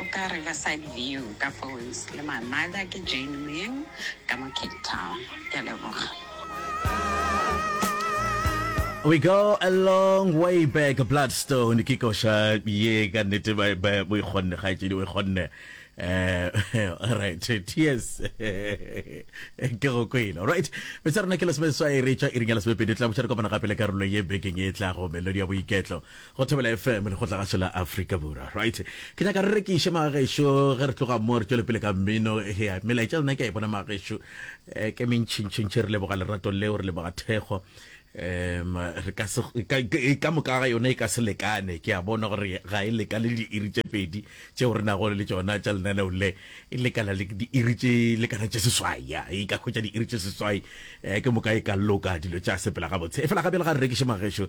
O ka re ka side view ka phones le my mother ke Jane Moeng ka mo Cape Town. Ke a leboga. We go a long way back Bloodstone ke koša ye ka nnete ba ba bo ikgonne kgaetšedi o ikgonne eh right tears ke go kwele right metsa rena ke lesome seswai re tšwa iring ya lesomepedi tla botšha re kopana gape le karolo ye bekeng e tlago melodi ya boiketlo Go Thobela FM, Lekgotlagašo la Afrika Borwa. Right. Ke nyaka re rekiše magešo ge re tloga mo re tšwele pele ka mmino. Hea, melaetša lena ke a e bona magešo. Eh, ke mentšhintšhintšhe re leboga lerato leo, re leboga thekgo. Um, re ka se ka, ka, ka moka ga yone e ka se lekane. Ke a bona gore ga e lekane le diiri tše pedi tšeo re nago le tšona tša lenaneo le. E lekana le diiri tše lekana tše seswai. Ya, e ka hwetša diiri tše seswai. Eh, ke moka e ka loka dilo tša sepela gabotse. E fela gape le ga re rekiše magešo,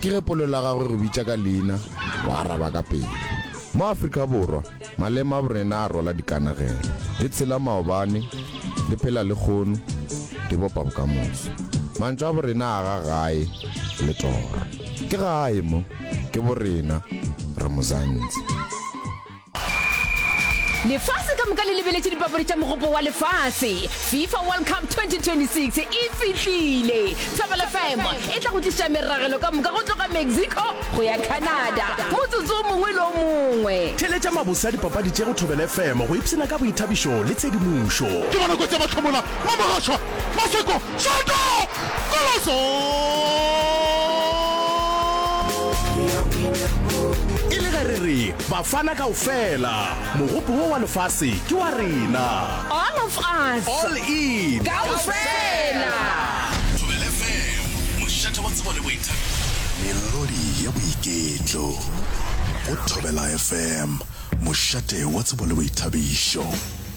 Ke ge polelo ya gagwe e go bitša ka leina, o araba ka pelo. Mo Afrika Borwa, maleme a borena a rwala dikanegelo. Re tshela maobane, re phela lekgono, re bopa bokamoso. Mantšu a borena a aga gae le toro. Ke gae mo, ke borena, re Muzanzi. Lefase ka moka le lebeletše dipapadi tša Mogopo wa Lefase, FIFA World Cup 2026 e fihlile. Thobela FM e tla go tliša meragelo ka moka go tloga Mexico go ya Canada motsotso o mongwe le o mongwe. Theeletša mabose a dipapadi tše go Thobela FM go ipshina ka boithabišo le tshedimošo. Ke bona kotsi ya mahlomola, Mamogashoa, Maseko. Tšoto! Koloso! E le ge re re Bafana kaofela, mogopo wo wa lefase ke wa rena. All of us. All in. Kaofela. Thobela FM, mošate wa tsebo le boithabišo. Melodi ya boiketlo. Go Thobela FM, mošate wa tsebo le boithabišo.